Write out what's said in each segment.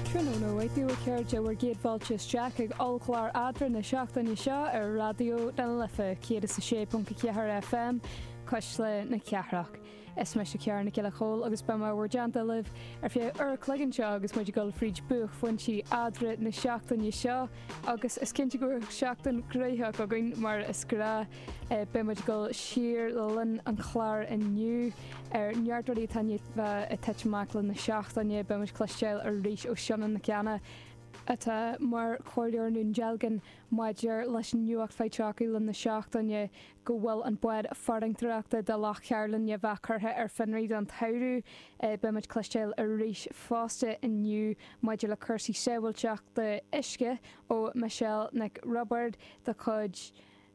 Tráthnóna mhaith daoibh a chairde, bhur gcéad fáilte isteach ag ollchlár eadra na seachtaine seo ar Raidió na Life 106.4 FM, Cuisle na Cathrach. Is mise Ciara Nic Giolla Chomhaill agus beidh mé i bhur dteannta libh ar feadh uair a chloig anseo agus muid ag dul fríd buaicphointí eadra na seachtaine seo agus is cinnte go bhfuil seachtain ghraitheach againn mar is gnáth! Beidh muid ag dul siar le linn an chláir inniu ar neart rudaí atá i ndiaidh a bheith ag titim amach le linn na seachtaine. Beidh muid ag cloisteáil arís ó Shíona Nic Cana, atá mar Chomhairleoir i nDún Dealgan maidir leis an nuacht faighte againn le linn na seachtaine go bhfuil an bád farantóireachta do Loch Cairlinn i ndiaidh a bheith curtha ar fionraí don tsamhradh. Beidh muid ag cloisteáil arís fosta inniu maidir le cúrsaí sábhailteachta uisce ó Michelle Nic Roibeárd de chuid.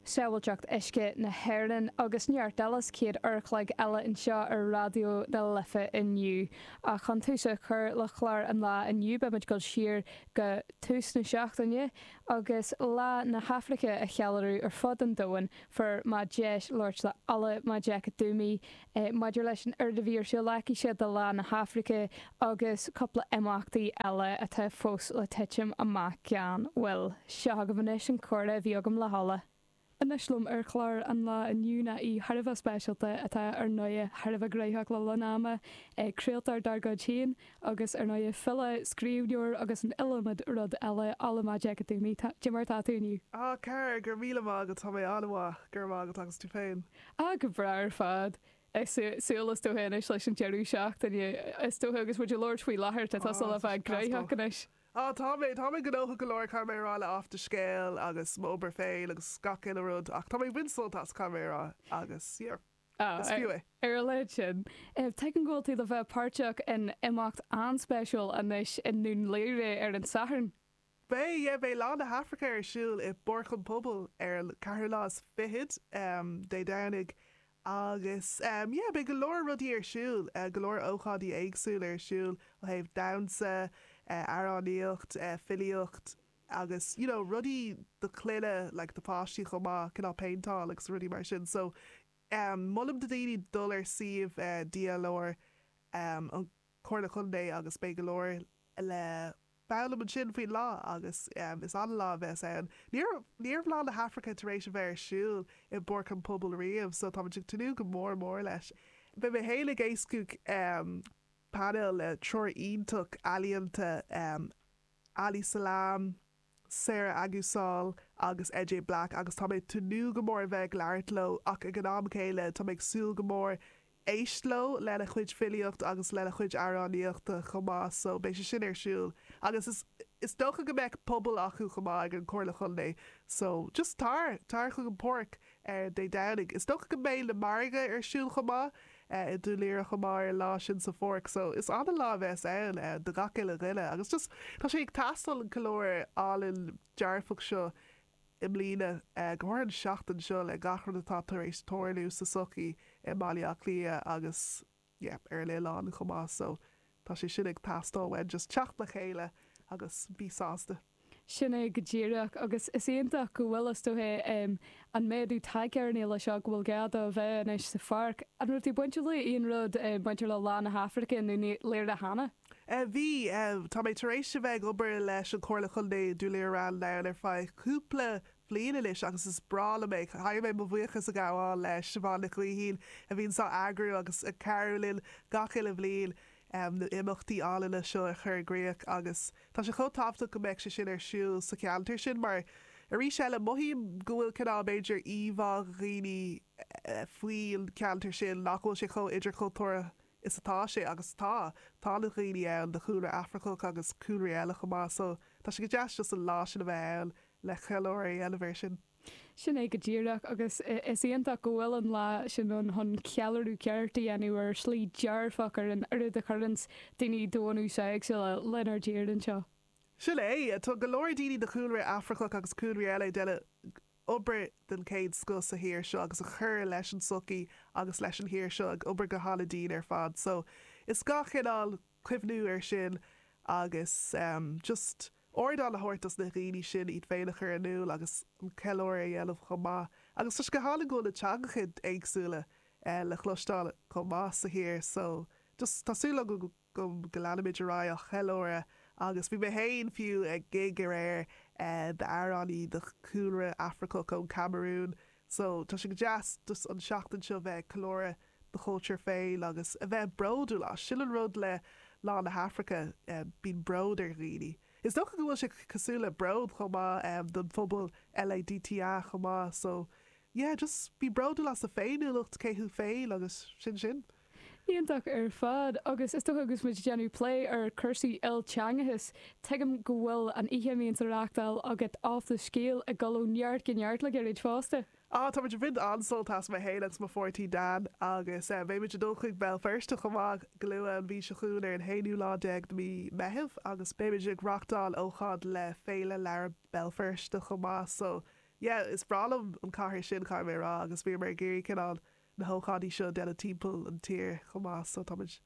Sábhailteacht Uisce na hÉireann agus neart eile sa chéad uair an chloig eile anseo ar Raidió na Life inniu. Ach chun tús a chur le chlár an lá inniu beimid ag dul siar go tús na seachtaine agus Lá na hAfraice a cheiliúradh ar fud an domhain. Fuair mé deis labhairt le Ola Majekodunmi, Maidir leis an oiread a bhí ar siúl aicise do Lá na hAfraice agus cúpla imeachtaí eile atá fós le titim amach gan mhoill, seo agaibh anois an comhrá a bhí agam le hOla. Anois liom ar chlár an lá inniu ná aoi thar a bheith speisialta atá ar ndóigh thar a bheith graitheach le linn ama, craoltóir dár gcuid féin agus ar ndóigh file, scríbhneoir agus an iliomad rud eile, Ola Majekodunmi, cad é mar atá tú inniu. Á, Ciara, go raibh míle maith agat, tá mé an-mhaith, go raibh maith agat agus tú féin? Á go breá ar fad ag súil is dócha anois leis an deireadh seachtaine, is dócha, agus muid ag labhairt faoi láthair, tá tusa le bheith graitheach anois. Á, tá mé, tá mé gnóthach go leor, caithfidh mé a rá, le Athscéal agus m'obair féin agus gach uile rud, ach tá mé ag baint sult as, caithfidh mé a rá, agus yeah, ar a laghad sin, tuigim go bhfuil tú le bheith páirteach in imeacht an-speisialta anois i nDún Laoghaire ar an Satharn. Beidh yeah beidh Lá na hAfraice ar siúl i bPáirc an Phobail ar an ceathrú lá is fichead, Dé Domhnaigh, agus yeah beidh go leor rudaí ar siúl, go leor ócáidí éagsúla ar siúl ó thaobh damhsa, amhránaíocht, filíocht agus you know rudaí do clainne like do pháistí chomh maith, cineál péinteáil agus rudaí mar sin so ehm molaim do dhaoine dul ar suíomh DLR ehm an Chomhairle Chontae agus beidh go leor le fáil ann ansin faoin lá, agus is an-lá a bheas ann. Ní raibh, ní raibh Lá na hAfraice tar éis a bheith ar siúl i bPáirc an Pobail riamh, so táimid ag tnúth go mór mór leis. Beidh mé féin ag éascú painéal le triúr iontach ealaíonta, Ali Selam, Sarah Agusal agus Jay Black, agus tá mé ag tnúth go mór a bheith ag labhairt leo, ach ag an am céanna, tá mé ag súil go mór Éist leo, lena chuid filíocht agus lena chuid amhránaíochta chomh maith so beidh sé sin ar siúl agus is is dócha go mbeadh puball acu chomh maith ag an Chomhairle Chontae so just tar, tar chuig an Páirc ar Dé Domhnaigh. Is dócha go mbeidh na margaidh ar siúl chomh maith i Dún Laoghaire chomh maith ar an lá sin sa Pháirc so is ana-lá a bheas ann do gach uile dhuine agus just tá sé ag teastáil an ceiliúradh álainn dearfach seo i mbliana. Go háirithe an seachtain seo le gach rud atá tar éis tarlú sa sochaí i mBaile Átha Cliath agus yeah ar an oileán chomh maith so tá sé sin ag teastáil uainn just teacht le chéile agus bí sásta. Sin é go díreach agus is iontach go bhfuil is dóigh em an méadú tagtha ar an fhéile seo go bhfuil gá do a bheith anois sa pháirc. An raibh tú bainteach le aon rud eh bainteach le Lá na hAfraice i nDún Laoghaire cheana? Bhí. Tá mé tar éis a bheith ag obair leis an Chomhairle Chontae i nDún Laoghaire Ráth an Dúin ar feadh cúpla bhliain anois agus is breá liom é. Caithfidh mé mo bhuíochas a ghabháil le Siobhán Nic Gaoithín a bhíonn á eagrú agus ag cabhrú linn gach uile bhliain na himeachtaí álainne seo a chur i gcríoch agus tá sé chomh tábhachtach go mbeadh sé sin ar siúl sa cheantar sin mar arís eile mothaím go bhfuil cineál b'fhéidir íomhá ag daoine faoin cheantar sin nach bhfuil sé chomh idirchultúrtha is atá sé, agus tá. Tá na dhaoine ann de chúlra Afracach agus cúlraí eile chomh maith, so tá sé go deas just an lá sin a bheith ann le ceiliúradh a dhéanamh air sin. Sin é go díreach, agus is iontach go bhfuil an lá sin ann chun ceiliúradh ceart a dhéanamh ar shlí dearfach ar an oiread a chuireanns daoine de náisiúin éagsúla lenár dtír anseo. Sin é, tá go leor daoine de chúlra Afracach agus cúlraí eile a dhéanann obair den chéad scoth sa thír seo agus a chuireann leis an tsochaí agus leis an thír seo ag obair go han-dian ar fad so is gá chineál cuimhniú ar sin agus em just ardán a thabhairt dos na dhaoine sin iad féin a chur in iúl agus an ceiliúradh a dhéanamh chomh maith agus tá sé go hálainn go bhfuil na teangacha éagsúla eh le chloisteáil chomh maith sa thír so just tá súil agam go go go leanfaimid ar aghaidh á cheiliúradh agus bhí mé féin, fiú, ag gig aréir d'amhránaí de chúlra Afracach ón Camarún so tá sé go deas just an seachtain seo bheith ag ceiliúradh do chultúr féin agus a bheith bródúil as, sin an rud le Lá na hAfraice, bíonn bród ar dhaoine. Is dócha go bhfuil sé cosúil le bród chomh maith don phobal LADTA chomh maith so yeah just bí bródúil as do féiniúlacht, cé thú féin agus sin sin. Iontach ar fad. Agus is dócha agus muid ag déanamh plé ar cúrsaí ilteangachais, tuigim go bhfuil an oíche a mbíonn á reáchtáil agat Off The Scéal ag dul ó neart go neart le gairid fosta. Á, tá muid ag baint an-sult as, mé fhéin agus mo pháirtí Dan, agus beidh muid ag dul chuig Béal Feirste chomh maith go luath an mhí seo chugainn ar an haonú lá déag de mhí Meitheamh agus beidh muid ag reáchtáil ócáid le Féile Leabhar Bhéal Feirste chomh maith so yeah is breá liom an cathair sin caithfidh mé a rá agus bhíomar ag iarraidh cineál na hócáidí seo a dhéanamh timpeall na tíre chomh maith so táimid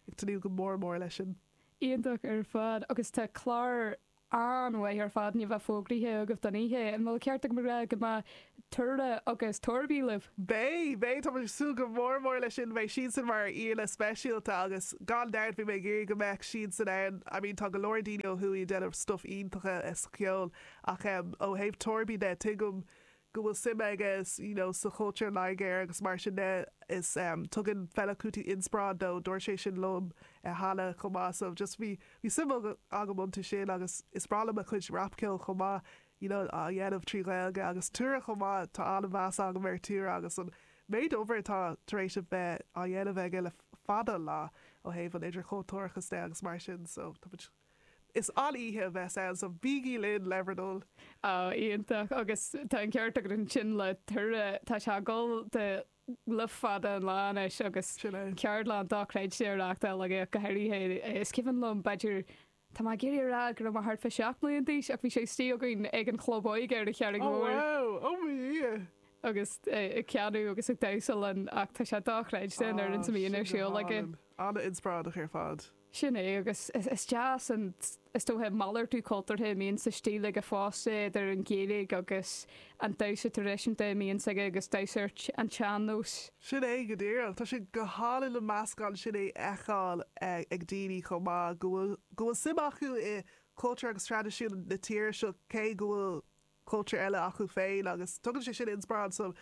ag tnúth go mór mór leis sin. Iontach ar fad agus tá clár an-mhaith ar fad anois fógraithe agaibh don oíche, an bhfuil ceart agam a rá go mbeidh Tura agus Torby libh? Beidh, beidh, táimid ag súil go mór mór leis sin, beidh siadsan mar aíonna speisialta agus gan dabht bhí mé ag iarraidh go mbeadh siadsan ann, I mean tá go leor daoine ó thuaidh ag déanamh stuif iontacha sa cheol ach em ó thaobh Torby de tuigim go bhfuil suim aige you know sa chultúr Nigéarach agus mar sin de is em tugann Fela Kuti inspioráid dó, dúirt sé sin liom eh cheana chomh maith so just bhí bhí suim agam iontu sin agus is breá liom a chuid rapcheoil chomh maith you know á dhéanamh trí Ghaeilge agus Tura chomh maith tá an-mheas agam ar Tura agus an méid obair atá tar éis a bheith á dhéanamh aige le fada an lá ó thaobh an idirchultúrachas de agus mar sin so tá muid Is an-oíche a bheas ann so bígí linn le bhur dtoil! Oh, iontach. Agus tá an ceart agat ansin le Tura, tá sé ag dul de luth fada an lá anois agus Sin é. ceardlanna dochreidte á reáchtáil aige go háirithe, is cuimhin liom b'fhéidir, tá mé ag iarraidh a rá go raibh mé thart fá seacht mbliana d'aois ach bhí sé istigh againn ag an chlub óige ar an Charraig Oh Mhór wow, oh mo dhia! agus ag canadh agus ag damhsa linn ach tá sé dochreidte na rudaí a bhíonn ar siúl aige. An-inspioráideach ar fad. Sin é, agus is deas an, is dócha, an malartú cultúrtha a mbíonn ar siúl aige fosta, idir an Ghaeilge agus an damhsa traidisiúnta a mbíonn aige agus damhsa ar an tsean-nós. Sin é go díreach. Tá sé go hálainn an meascán sin a fheiceáil ag daoine chomh maith, go bhfuil, go bhfuil suim acu i gcultúr agus traidisiún na tíre seo cé go bhfuil cultúr eile acu féin agus tugann sé sin inspioráid,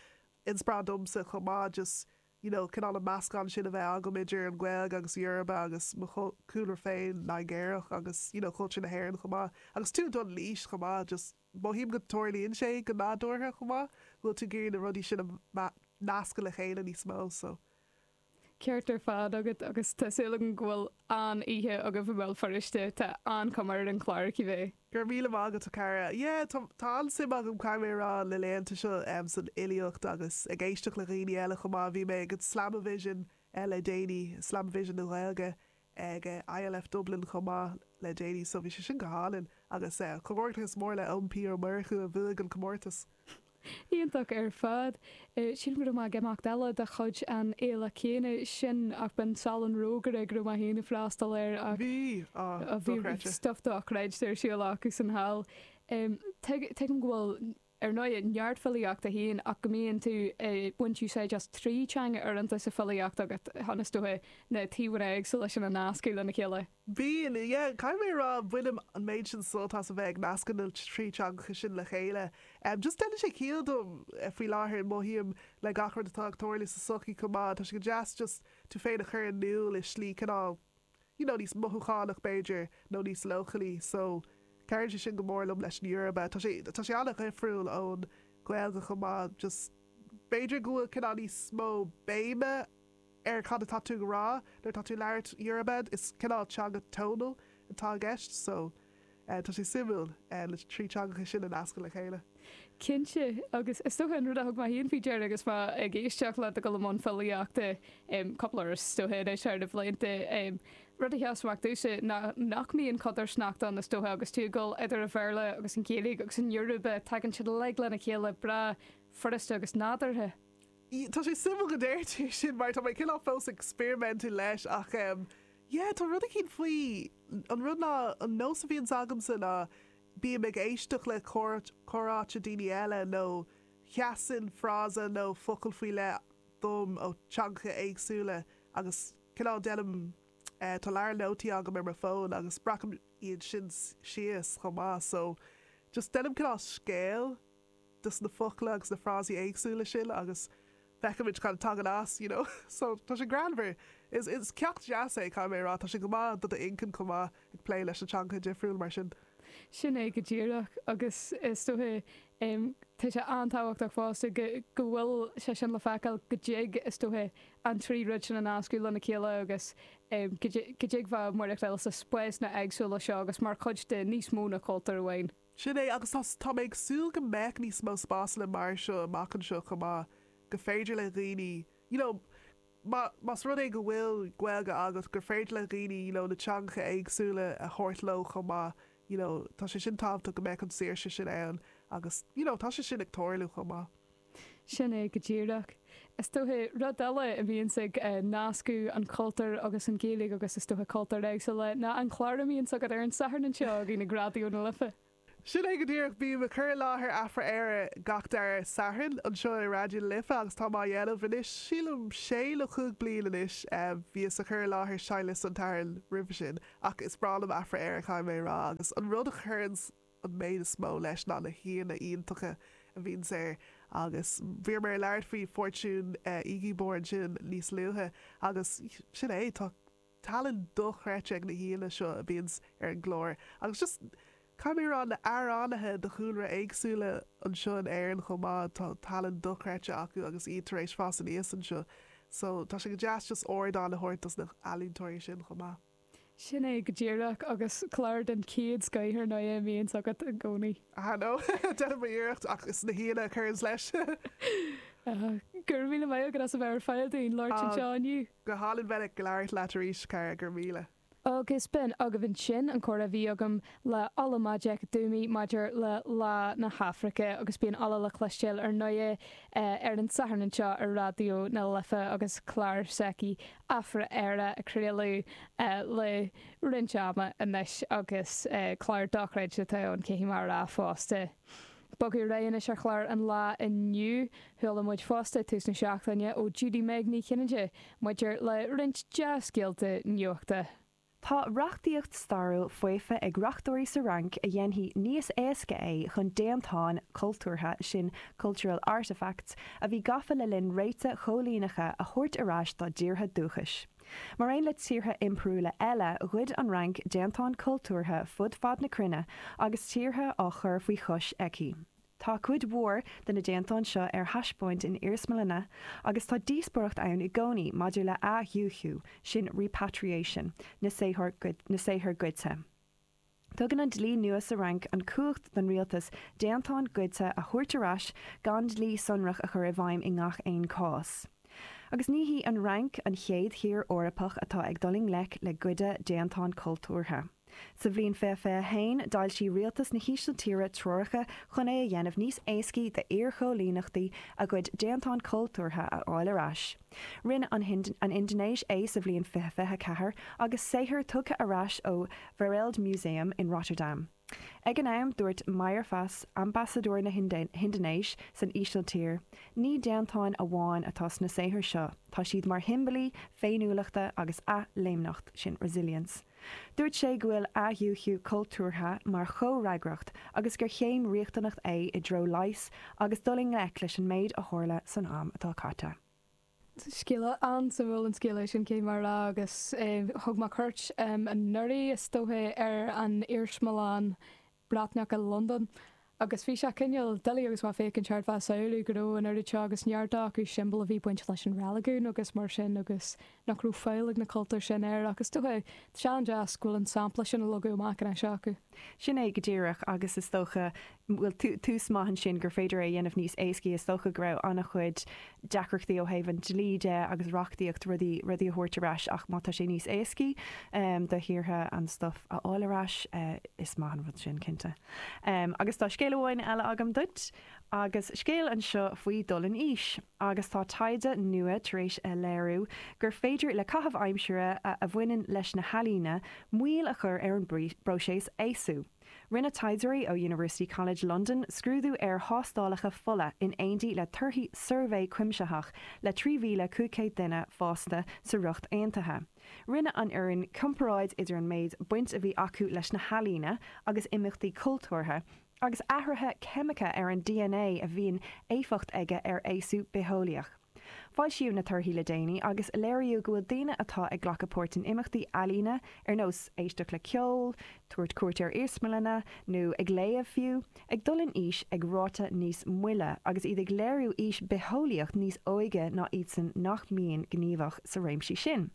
inspioráid domsa chomh maith just. you know cineál an meascán sin a bheith agam idir an Ghaeilge agus Yoruba agus mo chúlra féin Nigéarach agus you know cultúr na hÉireann chomh maith agus tú ag dul in aois chomh maith just mothaím go dtarlaíonn sé go nádúrtha chomh maith go bhfuil tú ag iarraidh na rudaí sin a nascadh le chéile níos mó so Ceart ar fad agat agus tá súil agam go mbeidh an-oíche agaibh i mBéal Feirste, tá an-chuma ar an chlár, cibé. Go raibh míle maith agat a Chara. Yeah, tá, tá an-suim agam caithfidh mé a rá na laethanta seo em san fhilíocht agus ag éisteacht le dhaoine eile chomh maith. Bhí mé ag an Slamavision eh le déanaí, Slamavision na Gaeilge ag eh ILF Dublin chomh maith le déanaí so bhí sé sin go hálainn agus eh comhghairdeachas mór le Eoin P Ó Murchú a bhuaigh an comórtas. Iontach ar fad. Sílim go raibh mé ag imeacht eile de chuid an fhéile céanna sin ach b'in Salon Rógaire go raibh mé féin ag freastal air ach Bhí! Á, bhí dochreidte. stuff dochreidte ar siúl acu sa tsamhradh. Tuigim go bhfuil, ar ndóigh, neart filíochta agat féin ach go mbíonn tú ag baint úsáid as trí teanga uaireanta sa filíocht agat chun, is dócha, na taobhanna éagsúla sin a nascadh lena chéile. Bíonn, yeah. Caithfidh mé a rá, bainim an méid sin sult as a bheith ag nascadh na trí teangacha sin le chéile. Just déanann sé ciall dom faoi láthair, mothaím le gach rud atá ag tarlú sa sochaí chomh maith, tá sé go deas just tú féin a chur in iúl i slí cineál you know níos mothúchánach b'fhéidir, nó níos leochailí. So, cabhraíonn sé sin go mór liom leis an Yoruba. Tá sé, tá sé an-dhifriúil ón Ghaeilge chomh maith, just b'fhéidir go bhfuil cineál níos mó béime, ar cad atá tú ag rá nuair atá tú ag labhairt Yoruba, is cineál teanga tonal atá i gceist, so tá sé suimiúil na trí teangacha sin a nascadh le chéile. Cinnte, agus is dóiche an rud a thug mé féin faoi deara agus mé ag éisteacht leat ag dul i mbun filíochta, cúpla uair is dóiche anois thar na blianta, rud a sheas amach domhsa ná nach mbíonn codarsnacht ann is dóiche agus tú ag dul idir an Bhéarla agus an Ghaeilge agus an Yoruba, tagann siad uilig lena chéile breá furasta agus nádúrtha. Tá sé suimiúil go ndeir tú sin mar tá mé cineál fós ag experimentú leis ach em yeah tá rud eicínt faoi, an rud ná an nós a bhíonns agamsa ná bím ag éisteacht le comhráite daoine eile nó sheasann frása nó focal faoi leith dom ó teangacha éagsúla agus cineál déanaim eh tá leabhar nótaí agam ar mo fón agus breacaim iad sin síos chomh maith so just déanaim cineál scéal de na focla agus na frásaí éagsúla sin agus feicimid cad a tagann as, you know. So, tá sé greannmhar. Is, is ceacht deas é, caithfidh mé a rá. Tá sé go maith do do inchinn chomh maith, ag plé leis na teangacha difriúla mar sin. Sin é go díreach. Agus is dóiche, em, tá sé an-tábhachtach fosta go, go bhfuil sé sin le feiceáil, go dtig, is dóiche, an trí rud sin a nascadh lena chéile agus, em, go dtig, go dtig bheith ag maireachtáil sna spásanna éagsúla seo agus mar chuid de níos mó ná cultúr amháin. Sin é, agus tá, tá mé ag súil go mbeadh níos mó spásanna mar seo amach anseo chomh maith, gur féidir le dhaoine, you know, má, más rud é go bhfuil Gaeilge agat, gur féidir le dhaoine, you know, na teangacha éagsúla a thabhairt leo chomh maith, you know, tá sé sin tábhachtach go mbeadh an saoirse sin ann agus, you know, tá sé sin ag tarlú chomh maith. Sin é go díreach. Is dóiche, rud eile a bhíonns ag nascadh an chultúr agus an Ghaeilge agus is dóiche cultúir éagsúla, ná an clár a mbíonns agat ar an Satharn anseo againn ag Raidió na Life. Sin é go díreach. Bím ag cur i láthair Afra-Éire gach dara Satharn anseo i Raidió na Life agus táim á dhéanamh anois, sílim, sé nó cúig bliain anois. Bhíos ag cur i láthair Seinnliosta an tSathairn roimhe sin ach is breá liom Afra-Éire, caithfidh mé a rá, agus an rud a chuireann. an méid is mó leis ná na haíonna iontacha a bhíonns air, agus bhí mé ag labhairt faoi Fortune Igiebor ansin níos luaithe, agus sin é, tá tallann dochreidte ag na haíonna seo a bhíonns ar an gclár, agus just, caithfidh mé a rá, na amhránaithe de chúlra éagsúla anseo in Éirinn chomh maith, tá tallann dochreidte acu agus iad tar éis fás aníos anseo, so tá sé go deas just ardán a thabhairt dos na healaíontóirí sin chomh maith. Sin é go díreach, agus clár den chéad scoith ar ndóigh a bhíonns agat i gcónaí. Ah no, déanaim mo iarracht, ach is na haíonna a chuireanns leis. Ah, go raibh míle maith agat as a bheith ar fáil dúinn labhairt anseo inniu. Ah, go hálainn bheith ag labhairt leat arís, cara, go raibh míle. Ó agus b'in agaibh ansin an comhrá a bhí agam le Ola Majekodunmi maidir le Lá na hAfraice, agus bíonn Ola le cloistéáil ar ndóigh ar an Satharn anseo ar Raidió na Life agus clár s'aici Afra-Éire a craoladh le roinnt ama anois agus clár dochreidte atá ann, caithfidh mé a rá fosta. Bogadh ar ais anois ar chlár an lá inniu. Chuala muid fosta tús na seachtaine ó Judy-Meg Ní Chinnéide maidir le roinnt dea-scéalta nuachta. Tá reachtaíocht stairiúil faofa ag reachtóirí sa Fhrainc a dhéanfaidh níos éasca é chun déantáin chultúrtha, sin cultural artefacts, a bhí gafa le linn réithe coilíneacha a thabhairt ar ais dá dtíortha dúchais. Mar aon le tíortha impiriúla eile, ghoid an Fhrainc déantáin chultúrtha fud fad na cruinne agus tíortha á chur faoi chois aici. Tá cuid mhór de na déantáin seo ar thaispeáint in iarsmalanna agus tá díospóireacht ann i gcónaí maidir le athdhúichiú, sin repatriation, na saothar goidte. Tugann an dlí nua sa Fhrainc an chumhacht don rialtas déantáin goidte a thabhairt ar ais gan dlí sonrach a chur i bhfeidhm i ngach aon chás. Agus ní hí an Fhrainc an chéad thír Eorpach atá ag dul i ngleic le goid déantán cultúrtha. Sa bhliain 2021, d'fhoilsigh Rialtas na hÍsiltíre treoracha chun é a dhéanamh níos éascaí d'iar-chóilíneachtaí a gcuid déantán cultúrtha a fháil ar ais. Rinne an Indinéis é sa bhliain 2024, agus saothair tugtha ar ais ó Wereldmuseum in Rotterdam. Ag an am, dúirt Mayerfas, Ambasadóir na hIndinéise san Ísiltír, Ní déantáin amháin atá sna saothair seo, tá siad mar shiombailí féiniúlachta agus athléimneacht, sin resilience. Dúirt sé go bhfuil athdhúichiú cultúrtha mar chomhfhreagracht agus gur chéim riachtanach é i dtreo leighis agus dul i ngleic leis an méid a tharla san am atá caite. Scéal an-suimiúil an scéal é sin, caithfidh mé a rá, agus thug mé cuairt anuraidh, is dóiche, ar an iarsmalann Breatnach i Londain, agus bhí sé cineál doiligh agus mé ag féachaint thart, bheith ag samhlú go raibh an oiread seo agus neart acu siombail a bhí baint leis an reiligiún agus mar sin agus nach raibh fáil ag na cultúir sin air ach is dócha, sé an-deas go bhfuil an sampla sin á leagadh amach anois acu. Sin é go díreach, agus is dócha, bhuel, tús maith ansin gur féidir é a dhéanamh níos éascaí, is dócha go raibh an-chuid deacrachtaí ó thaobh an dlí de agus reachtaíocht rudaí rudaí a thabhairt ar ais ach má tá sé níos éascaí do thíortha an stuif a fháil ar ais is maith an rud sin cinnte. Agus tá scéal amháin eile agam duit agus scéal anseo faoi dul in aois agus tá taighde nua tar éis a léiriú gur féidir le caitheamh aimsire a a bhaineann leis na healaíona moill a chur ar an bpróiseas aosú. Rinne taighdeoirí ó University College London scrúdú ar thástálacha fola in aontaí le torthaí suirbhé cuimsitheach le 3,500 duine fásta sa Ríocht Aontaithe. Rinne an fhoireann comparáid idir an méid baint a bhí acu leis na healaíona agus imeachtaí cultúrtha, agus athruithe ceimiceacha ar an DNA a bhíonn éifeacht aige ar aosú bitheolaíoch. Foilsíodh na torthaí le déanaí agus léiríodh go bhfuil daoine atá ag glacadh páirt in imeachtaí ealaíne, ar nós éisteacht le ceol, tabhairt cuairt ar iarsmalanna, nó ag léamh fiú, ag dul in aois ag ráta níos moille, agus iad ag léiriú aois bitheolaíoch níos óige ná iadsan nach mbíonn gníomhach sa réimsí sin.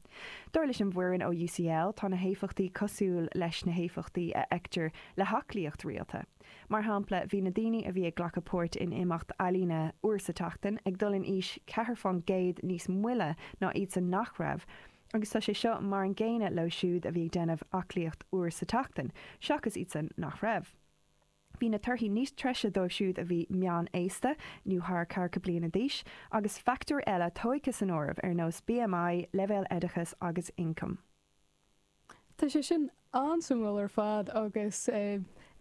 Dar leis an bhfoireann ó UCL, tá na héifeachtaí cosúil leis na héifeachtaí a fheictear le haclaíocht rialta. Mar shampla, bhí na daoine a bhí ag glacadh páirt in imeacht ealaíne uair sa tseachtain ag dul in aois ceathair faoin gcéad níos moille ná iadsan nach raibh, agus tá sé seo mar an gcéanna leo siúd a bhí ag déanamh aclaíocht uair sa tseachtain, seachas iadsan nach raibh. Bhí na torthaí níos treise dóibh siúd a bhí meán-aosta, nó thar ceathracha bliain d'aois, agus factóir eile tóigthe san áireamh, ar nós BMI, leibhéal oideachais agus ioncaim. Tá sé sin an-suimiúil ar fad agus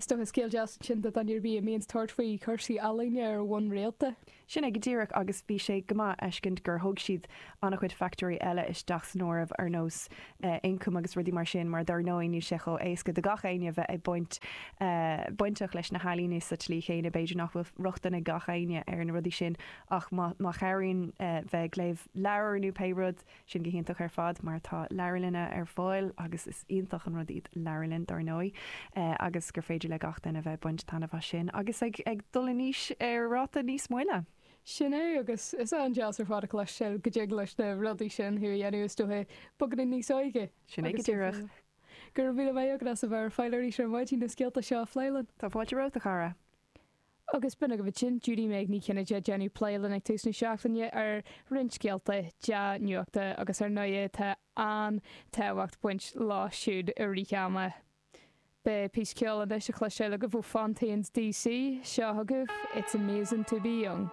is dócha scéal deas ansin do dhuine ar bith a bíonns tabhairt faoi chúrsaí ealaíne ar bhonn rialta. Sin é go díreach agus bhí sé go maith fheiscint gur thug siad an-chuid factóirí eile isteach san áireamh ar nós ioncaim agus rudaí mar sin mar dár ndóigh níl sé chomh éasca do gach éinne bheith ag baint bainteach leis na healaíona sa tslí chéanna b'fhéidir nach bhfuil rochtain ag gach éinne ar na rudaí sin ach má chabhraíonn bheith ag léamh leabhar nó pé rud Sin go hiontach ar fad mar tá leabharlanna ar fáil agus is iontach an rud iad leabharlainn dár ndóigh agus gur féidir le gach duine a bheith ag baint taitneamh as sin agus ag dul in aois ar ráta níos moille. Sin é agus is an-deas ar fad a chloisteáil go dtig leis na rudaí sin tú a dhéanamh is dóigh, beagán níos óige. Sin é go díreach. Go raibh míle maith agat as a bheith ar fáil arís ar maidin na scéalta seo a phlé linn. Tá fáilte romhat a chara. Agus b'in agaibh ansin Judy-Meg Ní Chinnéide ag déanamh plé linn ag tús na seachtaine ar roinnt scéalta dea-nuachta agus ar ndóigh tá an-tábhacht baint leo siúd i rith ama. Beidh píosa ceoil anois le cloisteáil agaibh ó Fontaines D.C. Seo chugaibh It's Amazing To Be Young.